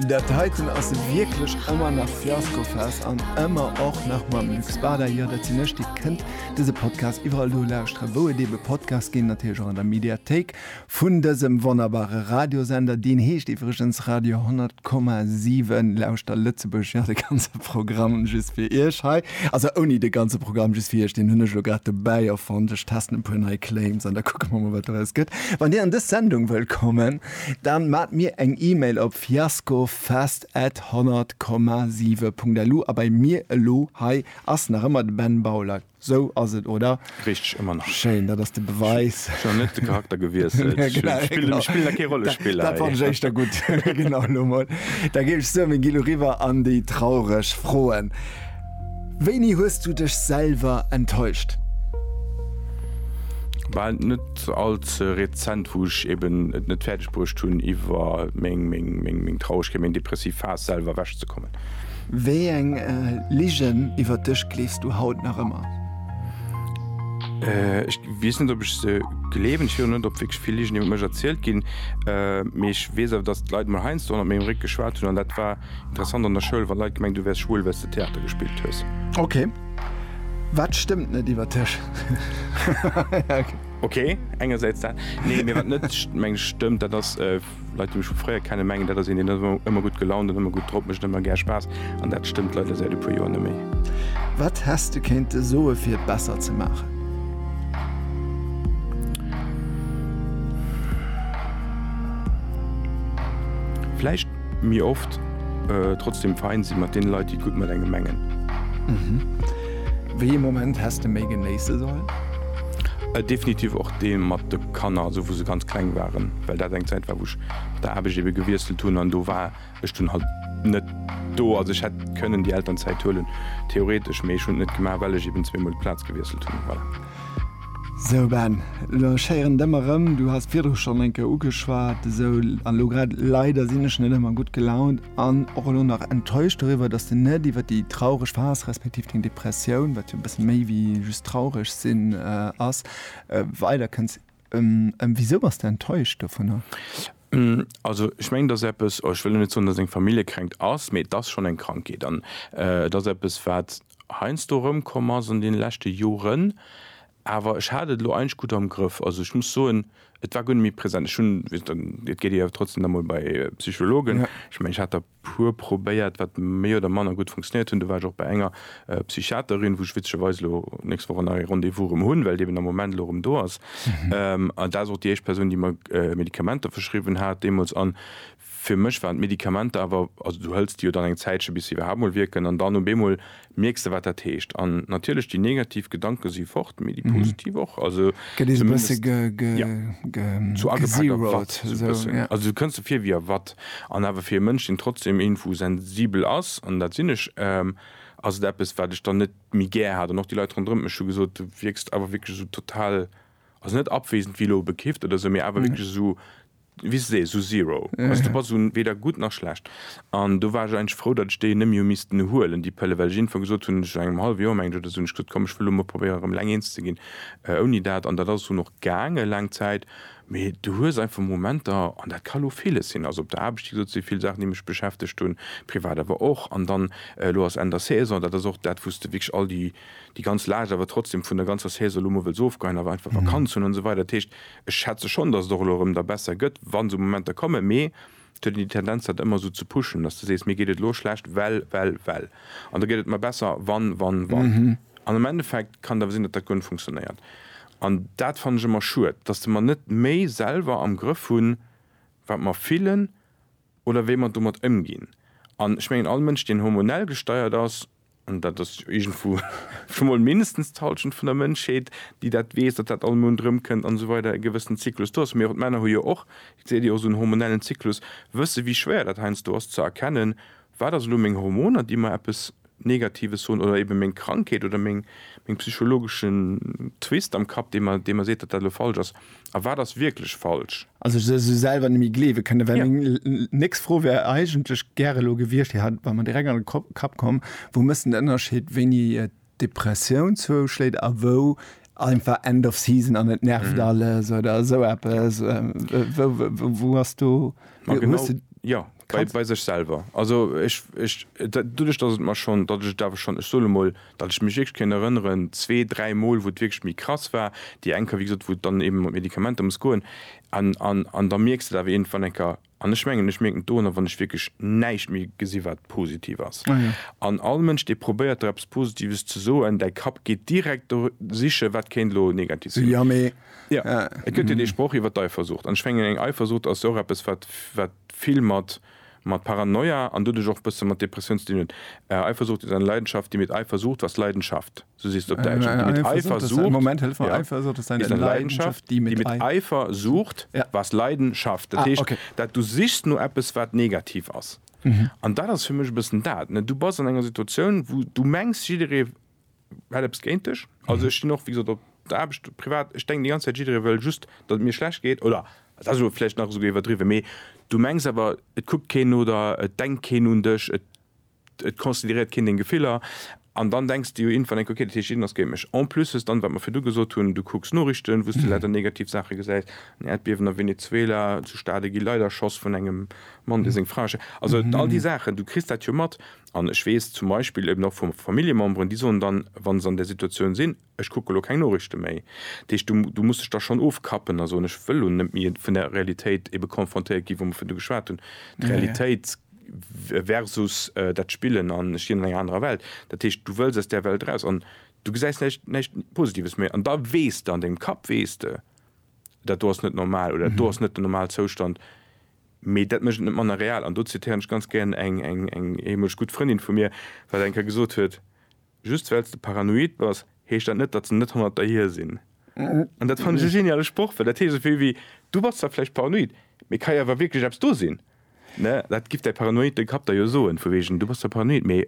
Dat heiten ass wierklech ëmmer nach Fiaskofest an ëmmer och nach mam Lux Bada. Jo, dat sinn ech. Dir kënnt dëse Podcast iwwerall do lauschteren, wou et eebe Podcasts ginn, natierlech och an der Mediathéik vun dësem wonnerbare Radiosender. Deen heescht iwwregens Radio 100,7. Lauschter Lëtzebuerg! Jo, de ganze Programm just fir Iech hei. Also ouni de ganze Programm, just fir Iech. Deen hunn ech elo grad dobäi erfonnt. Ech testen e puer nei Claims an da kucke mer mol, wat doraus gëtt. Wann Dir an dës Sendung wëllt kommen, Dann maat mir eng Email op fiaskofest at 100, 7 punkt lu a bei mir elo hei ass nach ëmmer de Ben Bauler. Sou ass et, oder? Richteg, ëmmer nach. Schéin, dat ass de Beweis. Ech hunn net de Charakter gewiesselt. Ech spillen da kee Rollespiller hei. Dat fannen ech éischter gutt. Genau, elo mol. Da géif ech soen, mir gi lo riwwer an déi traureg Froen. Wéini hues du dech selwer enttäuscht? Bal net all ze rezent, wou ech eben et net fäerdeg bruecht hunn iwwer meng Traurigkeet, meng depressiv Phas selwer ewech ze kommen. Wéi eng Ligen iwwer dech gleefs du haut nach ëmmer? Ech weess net ob ech se gleewen. Ech weess och net ob wierklech vill Ligen iwwer mech erzielt ginn. Mee ech weess awer, datt d'Leit mol heiansdo hannert mengem Réck geschwat hunn an dat war Interessant an der Schoul wann Leit gemengt du wärs schwul wells de Theater gespillt hues. Ok, wat stëmmt net iwwer dech? Ok, engersäits dat, nee mee wat net mengen ech stëmmt, dat ass Leit déi mech vu fréier kennen mengen dat ass een deen ass ëmmer gutt gelaunt an ëmmer gutt drop, mécht ëmmer gär Spaass an dat stëmmt leider säit e puer Joer neméi. Wat häss de kéinte soe fir et besser ze maachen? Vläicht. Mee oft trotzdem fein si mat den Leit déi gutt mat engem mengen. Mhm. Wéi ee Moment häss de méi genéisse sollen? Definitiv och dee mat de Kanner, also wou se ganz kleng waren, well dat eng Zäit war wou ech mat der Aarbecht ebe gewiesselt hunn an do war ech dunn halt net do. Also ech hätt kënnen déi Elternzäit huelen theoretesch, mee ech hunn et net gemaach well ech eben zweemol d'Plaz gewiesselt hunn. Voilà. Sou Ben, lo schéieren d'Ëmm erëm, du has d'Virus schonn eng Kéier ugeschwat, esou a lo grad, leider sinn ech net ëmmer gutt gelaunt an och elo nach enttäuscht doriwwer, dass de net iwwer déi traureg Phas respektiv deng Depressioun, wat jo e bësse méi wéi just traureg sinn ass, weider kënns. Ëmm, wisou bass de enttäuscht dovunner? Ben, also ech mengen, et ass eppes, oh ech wëll lo net soen, dass et eng Familljekränkt ass, mee et ass schonn eng Krankheet an et ass eppes wat. heiansdo erëmkomm ass an deene leschte Joren, awer ech hat et elo eigentlech gutt am Grëff. Also ech muss soen, et war guer net méi present. Ech hunn, et geet ee jo trotzdem nach mol bei Psychologen, ech mengen ech hat der e puer probéiert, wat méi oder manner gutt funktionéiert hunn. Du war ech och bei enger Psychiaterin, wou ech witzegerweis elo nächst Woch en neie Rendez-vous erëm hunn, well et eben am Moment elo erëm do ass. An dat ass och déi éischt Persoun, déi mer Medikamenter verschriwwen hat deemools. An Fir mech waren d'Medikamenter awer, also du hëls déi jo dann eng Zäitche bis se iwwerhaapt mol wierken an dann op eemol mierks de wat dat heescht. An natierlech déi negativ Gedanke si fort, mee déi positiv och, also Gëtt een e bësse zumindest, ja, zu agepakt a watt gezeroed, sou e esou, bëssen. ja. Also du kënns der vir wéi a watt. An awer fir e Mënsch deen trotzdem iergendwou sensibel ass, an dat sinn ech, ass et eppes wat ech dann net méi gär hat. An och déi Leit ronderëm mech hu gesot, du wierks awer wierklech esou total, also net abwesend wéi elo bekifft oder esou, mee awer wierklech esou, wéi ech sees, esou zero. Also do bass du weder gutt nach schlecht. An do war ech eigentlech frou, datt ech déi net méi hu missten huelen, déi Pëlle, well ech iergendwann gesot hunn, esou no engem hallwe Joer, menge ech, oder esou, hunn ech gesot, komm, ech wëll elo mol probéieren, erëm eleng eens ze ginn ouni dat. An dat ass dunn och gaange laang Zäit. Mee du hues einfach Momenter, an dat ka elo villes sinn, also op der Aarbecht, wéi gesot, si vill Saachen, déi mech beschäftegt hunn, privat awer och. An dann, elo ass Enn der Saison, dat ass och dat, wou s de wierklech all déi, déi ganz Laascht awer trotzdem vun der ganzer Saison elo mol wëlls ofgeheien, awer einfach Vakanz hunn an esou weider. Dat heescht. Ech schätze schonn, datt et och elo erëm da besser gëtt, wa sou Momenter kommen, mee et huet een déi Tendenz, dat ëmmer esou ze pushen, datt s de sees, mir geet et elo schlecht, well, well, well, an da gëtt et mer besser, wann, wann, wann. An am Endeffekt kann et awer sinn, datt dat guer net funktionéiert. An dat fannen ech ëmmer schued, datt de mer net méi selwer am Grëff hunn, wat mer fillen oder wéi mer domat ëmginn. An ech mengen, all Mënsch, deen hormonell gesteiert ass, An dat ass iergendwou scho mol mindestens d'Hallschent vun der Mënschheet, déi dat weess, datt dat all Mount erëmkënnt an esou weider, e gewëssen Zyklus do ass. Mee och d'Männer hu jo och, et seet Dir, och esou en hormonellen Zyklus, wësse wéi schwéier dat heiansdo ass ze erkennen, Wat ass elo meng Hormoner, déi mer eppes Negatives soen, oder ebe meng Krankheet oder meng psychologeschen Twist am Kapp, dee mer seet, datt dat elo falsch ass? a wat ass wierklech falsch? Also ech sou selwer net méi gleewe kënne, well meng nächst Fro wär eigentlech gär elo gewiescht, déi hat war mer direkt an de Kapp komm, wou méchs de den Ënnerscheed, wéini d'Depressioun zouschléit a wou einfach End of season an et nervt alles oder esou eppes? Wou ass do, wou hues de. Bei sech selwer. Also ech, ech, doduerch datt et mer schonn, datt ech et awer schonn, ech soen emol, datt ech mech wierklech kéint erënneren, zwee, dräi Mol, wou et wierklech méi krass war, déi eng Kéier, wéi gesot, wou et dann eeben mat Medikamenter muss goen, an, an, an da mierks de et awer iergendwann eng Kéier. An ech mengen, ech mierken et doranner, wann ech wierklech näischt méi gesi wat positiv ass. An all Mënsch, dee probéiert der eppes Positives ze soen, däi Kapp geet direkt do siche wat kéint elo negativ sinn. Jo, et gëtt jo dee Sproch iwwer d'Eifersucht. An ech mengen, eng Eifersucht ass jo och eppes, wat, wat vill mat, mat Paranoia an doduerch och e bësse mat Depressioun ze dinn huet. Eifersucht ist eine Leidenschaft, die mit Eifersucht was Leidenschaft, esou seet se op Däitsch. Eng Eifersucht ist eine Leidenschaft, die mit Eifersucht was Leiden schafft. Dat heescht, dat du sichs no eppes, wat negativ ass. An dat ass fir mech e bëssen dat. Du bass an enger Situatioun, wou du mengs, jidderee hätt eppes géint dech. Also ech stin och wéi gesot op der Aarbecht, privat, ech denken déi ganz Zäit jidderee wëll just datt et mir schlecht geet oder dat ass elo vläicht nach esouguer iwwerdriwwen, mee du mengs awer et kuckt keen no der, et denkt keen un dech, et et consideréiert keen deng Gefiller an dann denks de jo iergendwann enk, okay, dat heescht jiddereen ass géint mech. En plus hues dann, wat mer virdu gesot hunn, du kucks Norichten, wou s de leider negativ Saache gesäis, en Äerdbiewen a Venezuela, zu Stade gi Leit erschoss vun engem Mann, dee seng Fra ersch. Also all déi Saachen, du kriss dat jo mat. An ech weess zum Beispill eben och vu Familljememberen, déi soen dann, wa se an där Situatioun sinn, Ech kucke elo keng Noriichte méi. Dat heescht, du, du muss dech da schonn ofkappen a soen, Ech wëll elo net méi vun där Realitéit ebe konfrontéiert ginn, wou mer virdu geschwat hunn, d'Realitéit versus dat Spillen an ech lien an enger anerer Welt. Dat heescht, du wëlls aus där Welt eraus an du gesäis näischt, näischt Positives méi. An da weess de, an dengem Kapp weess de, Dat do ass net normal oder dat do ass net den Normalzoustand. Mee dat mécht et net manner real. An do zitieren ech ganz gären eng ehemoleg gutt Frëndin vu mir, wat eng Kéier gesot huet, Just well s de paranoid bass, heescht dat net, datt se net hannert der hier sinn. An dat fannen ech e geniale Sproch, well dat heescht esou vill wéi, Du bass zwar vläicht paranoid, mee et ka jo awer wierklech eppes do sinn. Dat giff däi paranoide Kapp der jo soen, vu wegen, Du bass zwar paranoid, mee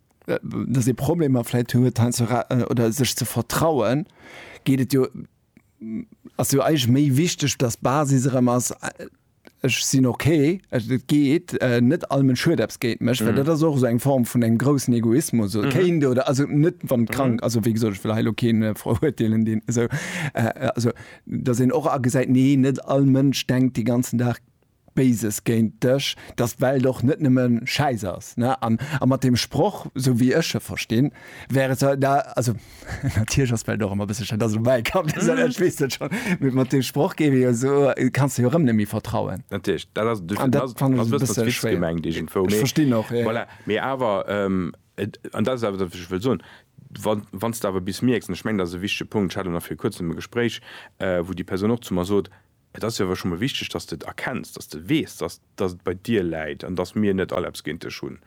dass ee Problemer vläit huet hei ze ra oder sech ze vertrauen, geet et jo, ass jo eigentlech méi wichteg, dass d'Basis erëm ass, ech sinn okay, et geet, net all men Schued eppes géint mech, well dat ass och esou eng Form vun engem groussen Egoismus oder kéint oder also net wann d'krank, also wéi gesot ech wëll hei elo keen verurteelen deen esou, also dass een och agesäit, nee net all Mënsch denkt de ganzen Dag Béises géint dech, dass d'Welt och net nëmme Schäiss ass, ne? An mat deem Sproch, esou wéi ech e verstinn, wär et da, also natierlech ass et vläicht och ëmmer e bësse schei, dass elo mäi Kand dee soll, ech weess dat schonn, mee mat deem Sproch géif ee jo esou, kanns de jo erëm net méi vertrauen. Natierlech, dat ass, An dat fannen ech e bësse schwéier. Ech verstinn och, jo. Voilà, mee awer, an dat ass awer dat, wat ech wëll soen, wa wann s de awer bis mierks, an ech mengen, dat ass e wichtige Punkt, ech hat elo nach viru Kuerzem e Gespréich, wou déi Persoun och zu mer sot, Et ass jo awer scho mol wichteg, dass de et erkenns, dass de weess, dass dass et bei dir läit an dass mir net all eppes géint dech hunn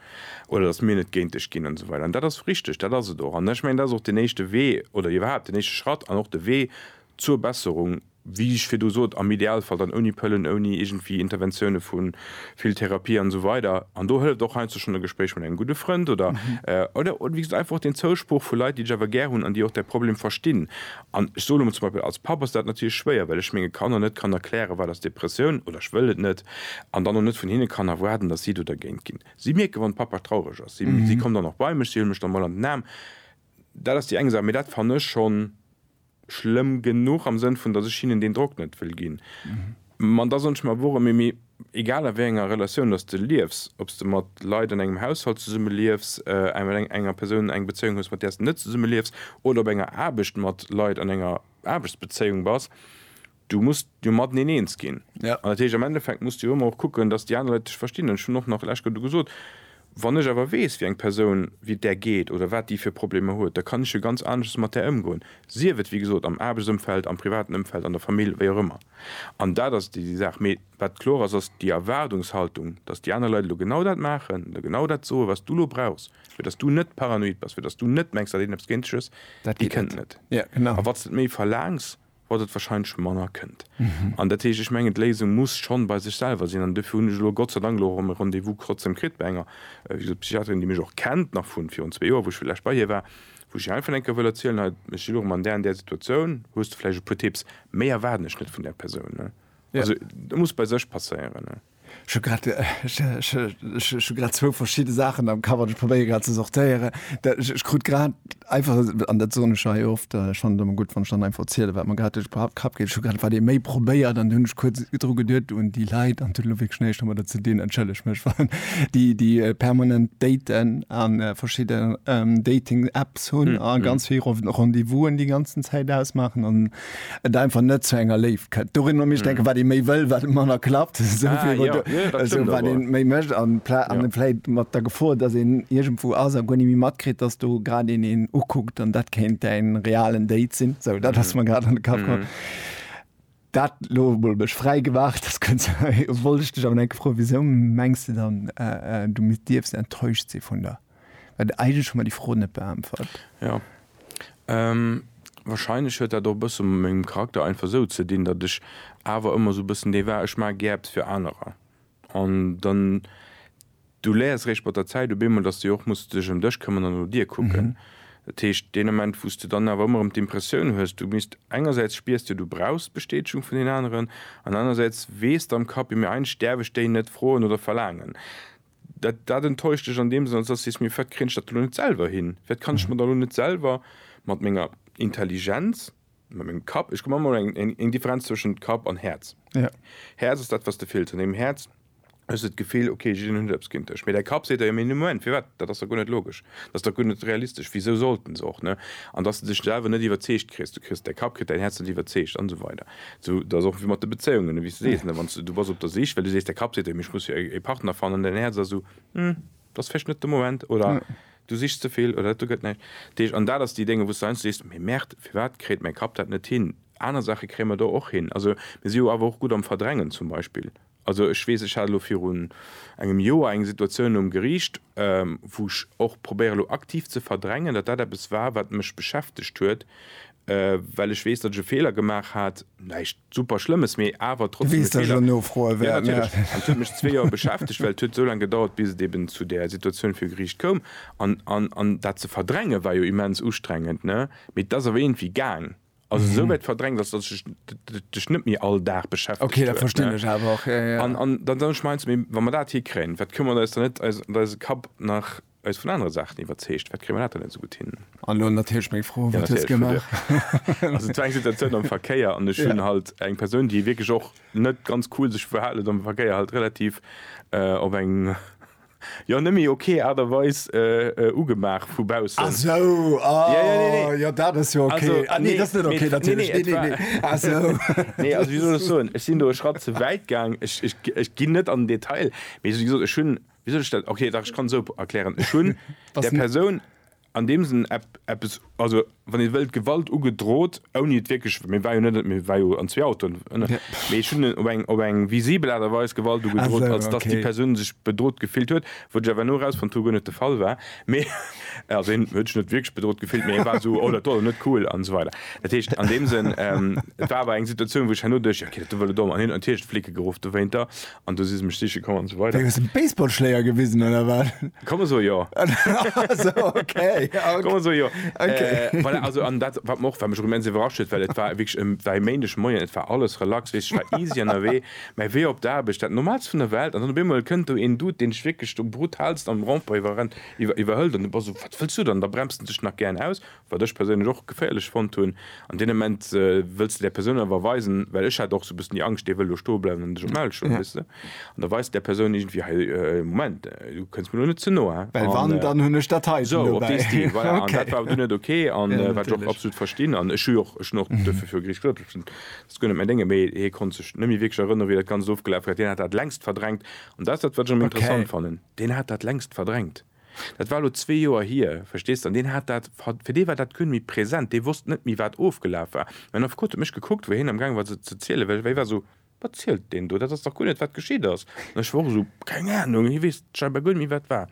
oder dass mir net géint dech ginn an esou weider. An dat ass richteg, dat ass et och. An ech mengen, dat ass och deen éischte Wee oder iwwerhaapt deen éischte Schratt an och de Wee zur Besserung, wéi ech virdu sot, am Idealfall dann ouni Pëllen, ouni iergendwéi Interventioune vu vill Therapie an esou weider. An do hëlleft och heiansdo schonn e Gespréich mat engem gudde Frënd oder oder wéi gesot einfach och deen Zousproch vu Leit, déi dech awer gär hunn an déi och däi Problem verstinn An ech soen elo mol, zum Beispill als Papp ass dat natierlech schwéier, well ech menge Kanner net kann erklären, wat ass Depressioun, oder ech wëll et net, an dann och net vun hinne kann erwaarden, datt si do dergéint ginn. Si mierken, wann Papa traureg ass, si kommen dann och bei mech, si huele mech dann mol an den Aarm. Dat ass déi eng Saach, mee dat fannen ech schonn schlëmm genuch am Sënn vun, datt ech hinnen deen Drock net wëll ginn. Ma da soen ech mer, Wor ëm emi, egal a wéi enger Relatioun dass de liefs, ob s de mat Leit an engem Haushalt zesumme liefs, mat enger Persoun eng Bezéiung hues, mat där s de net zesumme liefs, oder op enger Aarbecht mat Leit an enger Aarbechtsbezéiung bass, du muss jo mateneen eens ginn. An dat heescht, am Endeffekt muss de jo ëmmer och kucken, dass déi aner Leit dech verstinn. An ech hunn och nach lech do gesot, Wann ech awer weess, wéi eng Persoun, wéi et där geet oder wat déi fir Problemer huet, da kann ech jo ganz aneschters mat där ëmgoen, sief et, wéi gesot, am Aarbechtsëmfeld, am privaten Ëmfeld, an der Famill, wéi och ëmmer. An dat ass déi Saach. Mee wat kloer ass, ass déi Erwaardungshaltung, datt déi aner Leit elo genau dat maachen, elo genau dat soen, wat s du elo brauchs, fir datt s du net paranoid bass, fir datt s du net mengs, datt een eppes géint dech hues, déi kënnt net. A wat s de et méi verlaangs, wat et warscheinlech manner kënnt. An dat heescht, ech mengen, d'Léisung muss schonn bei sech selwer sinn. An dofir hunn ech elo Gott sei Dank elo erëm e Rendez-vous trotzdeem kritt bei enger, wéi gesot, Psychiaterin, déi mech och kennt, nach vu virun zwee Joer, wou ech vläicht bei hir war, Wou ech einfach enke wëll erzielen, hei ech elo rem an där an där Situatioun, hues de vläicht e puer Tipps, méi erwaarden ech net vun där Persoun, ne? Also dat muss bei sech passéieren, ne? Ech hu grad, ech hu grad zwou verschidde Saachen am Kapp an ech probéiere grad ze sortéieren. Ech krut grad einfach, an dat soen ech jo hei oft, ech fannen et ëmmer gutt, wann ech dann einfach erzielen, wat mer grad duerch de Kapp geet, ech hu grad wat ee méi probéiert an du hunn ech kuerz dru geduet un déi Leit an et huet elo wierklech näischt domadder ze dinn, entschëlleg mech, wann déi permanent daten. an verschidde ähm, Dating-Apps hunn mm, a mm. ganz vill Rendezvousen déi ganzen Zäit ausmachen an et einfach net zu enger Léif kënnt. Dorin mech mm. denke wat de méi wëll, wat Manner klappt so, ah, ja. du, ja, so, wat den méi mëcht an Plä an ja. Pläit mat der Gefor, dat en Igent vu ass a gonn mi matkrit, dats du grad in en ukuckt an dat kéint en realen Date sinn. So, dat ass mm. man grad an de Kap. Mm. Dat lo mol mech fräi gemaach, dass kënns wollt ech dech awer enke froen, wisou mengs de dann du misst dierfs enttäuscht si vun der, well eigentlech hu mer déi Fro net beäntwert. Jo, wahrscheinlech huet dat och e bësse mat mengem Charakter einfach esou ze dinn, datt ech awer ëmmer esou e bëssen dee war, ech maache gär eppes fir anerer an dann Du läers réischt mat der Zäit op eemol, dass de jo och muss dech ëm dech këmmern an no dir kucken. Dat heescht, deen Ament, wou s de dann awer ëmmer erëm d'Impressioun hues, du misst, engersäits spiers de, du brauchs d'Bestätegung vun den aneren, an anerersäits weess de am Kapp, jo, mee eigentlech däerf ech déi net froen oder verlaangen. Dat, dat enttäuscht dech an deem Sënn, als dass du sees, mee wat kréien ech dat elo net selwer hin? Wat kann ech mer da elo net selwer mat menger Intelligenz, mat mengem Kapp, ech gemaach emol eng Differenz zwëschent Kapp an Häerz, Häerz ass dat, wat s de fills an deem Häerz, Ech hu sou d'Gefill, okay, jiddereen huet eppes géint dech. Mee däi Kapp seet der, jo mee Moment, firwat, dat ass der guer net logesch, dat ass der guer net realistesch, wisou sollten se och, ne? An dass de dech selwer net iwwerzeegt kriss, du kriss, däi Kapp kritt däin Häerz net iwwerzeegt an esou weider. Sou, dat ass och wéi mat de Bezéiungen, ne, wéi s de sees, ne, wann s du, du bass op der Sich, well du sees, däi Kapp seet der, jo mee ech muss jo e, e Partner fannen, däin Häerz ass esou, hm, dat ass vläicht net de Moment oder du sichs ze vill oder dat do gëtt näischt. Dat heescht, an dat ass déi Dénger, wou s du heiansdo sees, mee merde, firwat kréit mäi Kapp dat net hin? Aner Saache kréie mer do och hin. Also, mir si jo awer och gutt am Verdrängen zum Beispill. Also ech weess, ech hat elo virun engem Joer eng Situatioun um Geriicht, wou ech och probéiere elo aktiv ze verdrängen, datt dat eppes war, wat mech beschäftegt huet, well ech weess, datt ech e Feeler gemaach hat, näischt super Schlëmmes, mee awer trotzdem e Feeler. Du weess, datt ech elo froe wäert. Jo, natierlech. An et huet mech zwee Joer beschäftegt, well et huet esou laang gedauert, bis et eben zu där Situatioun viru Geriicht koum. An dat ze verdränge war jo immens ustrengend, ne? Mee et ass awer iergendwéi gaang. also mhm. so weit verdrängt dass das ich dich nicht mehr all Tag beschäftigt okay da verstehe ich aber auch ja, ja. Und, und dann dann schmeißt mir wenn man da hier kriegen was können wir da ist da nicht also da ist Kap nach als von anderen Sachen überzecht wat kriminal net so gut hin froh ja, Situation am Verkehr an schön ja. halt eng Person die wirklich auch net ganz cool sich verhalen am Verkehr halt relativ äh, op eng Jo nemme ok Art a Weis ugemaach vu baussen. Ah sou ah jo dat ass jo ok ah nee dat ass net ok natierlech nee nee nee ah sou nee also wéi soll ech soen ech sinn do e Schratt ze wäit gaang ech ech ech ginn net an den Detail mee wéi gesot ech hunn wéi soll ech dat ok dach ech kann esou erklären ech hunn der Persoun an deem Sënn eppes, also wann ee wëllt, Gewalt ugedroht, ouni et wierklech, mir war jo net, mir war jo an zwee Autoen, mee ech hunn op eng, op eng visibel Aart a Weis Gewalt ugedroht, als dass déi Persoun sech bedroht gefillt huet, wou ech awer elo erausfonnt hu, guer net de Fall war, mee also hien huet sech net wierklech bedroht gefillt, mee e war esou, oh dat wor elo net cool an esou weider. Dat heescht an deem Sënn, et war awer eng Situatioun, wou ech herno duecht, jo, okay, dat wor elo domm, an hien huet natierlech d'Flicke geruff dowéinter. An do si se mech siche komm an esou weider. Wéi, hues de Baseballschléier gewisen oder wat? Ka mer soe jo. Sou, okay, ok. Ka mer soe jo. Ok. Voilà, also an dat, wat mer och, wat mech och immens iwwerrascht huet, well et war wierklech e, war e Méindeg Moien, et war alles relax, weess, ech war easy ënnerwee, mä wéi op d'Aarbecht, dat Normaalst vun der Welt, an dann op eemol kënnt do een Dude, deen dech wierklech do brutalst am Rond-point iwwerrennt, iwwer, iwwerhëlt, an du bass esou, wat wëlls du dann? Da bremst en dech nach gären aus, wat ech perséinlech och geféierlech fonnt hunn, an deem Ament wëlls de där Persoun awer weisen, well ech hat och sou e bëssen déi Angscht, dee wëll elo stoe bleiwen an dech op d'Maul schloen, weess de, an da weis de där Persoun iergendwéi, hei, Moment, du kënns mir elo net ze no, an, well wann, dann hunn ech dat heiten esou, op dee Stil, voilà, an dat war awer du net ok, an wat ech och absolut verstinn, an ech hu jo och, ech hunn och duerfir viru Gericht gesot, ech hunn, dat ass guer net mäin Déngen, mee hie konnt sech net méi wierklech erënnere wéi dat Ganzt ofgelaf war, deen hat dat längst verdrängt, an dat ass dat wat ech am interessant fannen, deen hat dat längst verdrängt. Dat war elo zwee Joer hier, verstees de, an deen hat dat, fir dee war dat guer net méi present, dee wosst net méi, wat ofgelaf war. Mä en Affekot huet mech gekuckt, wéi hien amgaange war se ze zielen, well hie war esou, Wat zielt deen do? Dat ass dach guer net, wat geschitt ass. An ech war och esou, Keng Anung, hie weess scheinbar guer net méi, wat war.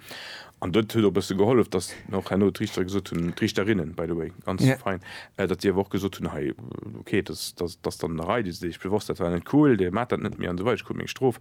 An dat huet och e bësse gehollef, datt mir och herno d'Riichtere gesot hunn, d'Riichterinnen, by the way, ganz fein, datt déi awer och gesot hunn, Hei, okay, datt ass dann en Erei, dee se deeg bewosst, dat war net cool, dee maacht dat net méi an esou weider, dee krut meng Strof.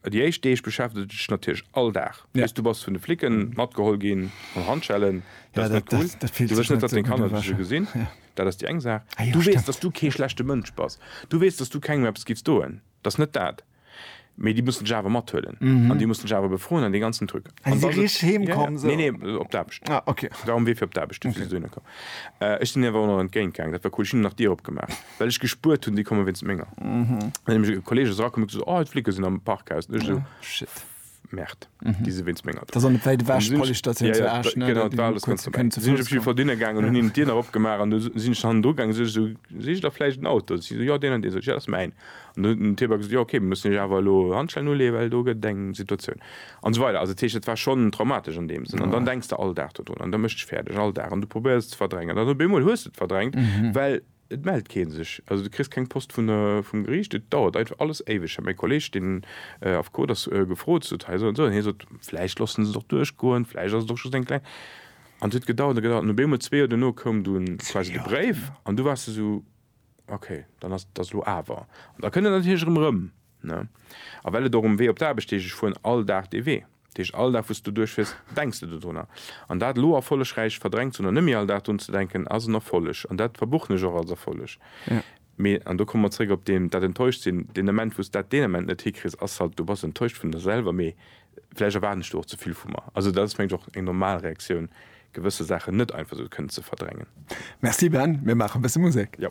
Déi éischt Deeg beschäftegt et dech natierlech all Dag, bis du bass vun de Flicken matgeholl ginn an Handschellen. Dat ass net cool. Du wëlls net, datt deng Kanner dech esou gesinn. Dat ass déi eng Saach. Du weess, datt du kee schlechte Mënsch bass. Du weess, datt du kengem eppes giffs doen. Dat ass net dat. Mee déi mussen dech awer mathuelen an déi mussen dech awer befroen an dee ganzen Truc. An da sot. Nee, nee, op d'Aarbecht. War um Wee fir op d'Aarbecht. Ech sinn hinnen awer och nach entgéint gaangen. Dat war cool. Ech hunn nach d'Dier opgemaach. Well ech gespuert hunn, déi komme wéinst menger. Dann ass e Kolleeg esou erakomm, huet gesot, oh, d'Flicke sinn am Parkhaus. Dann ech esou, shit, Merd, déi si wéinst menger do. Dat ass an der wäit ewech, d'Policestatioun zu Esch, ne? Genau, dat war alles ganz dobäi. Sinn ech op jiddwer Fall dunne gaangen an hunn hinnen d'Dier nach opgemaach an du sinn ech hannendru gaangen. Sot ech esou, Sicht der vläicht en Auto? Sot si esou, Jo, deen an deen. Sot ech, Jo, dat ass mäin. An du huet den Tierback gesot, Jo, okay, mir mussen iech awer elo Handschellen uleeën, well do gëtt et eng Situatioun. An esou weider. Also dat heescht, et war schonn traumatesch an deem Sënn. An dann denks de all Dag dodrun an dat mécht dech fäerdeg, all Dag. An du probéiers et ze verdrängen. An op eemol hues de et verdrängt, well Et mellt kee sech, also du kriss keng Post vum Geriicht. Et dauert einfach alles éiweg. Ech hat mäi Kolleeg, deen Affekot ass, gefrot, sot, hei esou an esou. An hie sot, vläicht loossen se et och duerchgoen, vläicht ass et och just eng kleng. An et huet gedauert an gedauert an op eemol zwee Joer duerno koum dunn quasi de Bréif an du waars esou, ok, dann ass et elo awer. An da kënnt et natierlech erëm erëm, ne. A well et och um Wee op d'Aarbecht heescht, ech fueren all Dag dee Wee. Deeg all Dag wou s du duerchfiers, denks de dodrunner. An dat elo erfollegräich verdrängt ze hunn an net méi all Dag drun ze denken ass en Erfolleg. An dat verbuchen ech och als Erfolleg. Mee, an do komme mer zréck op deen, dat enttäuscht sinn, deen Ament wou s dat deen Ament net hikriss ass halt, du bass enttäuscht vun der selwer, mee vläicht erwaarden ech do och ze vill vu mer. Also dat ass mengen ech och eng normal Reaktioun, gewësse Saachen net einfach esou kënnen ze verdrängen. Merci Ben, mir maache bësse Musek. Jo.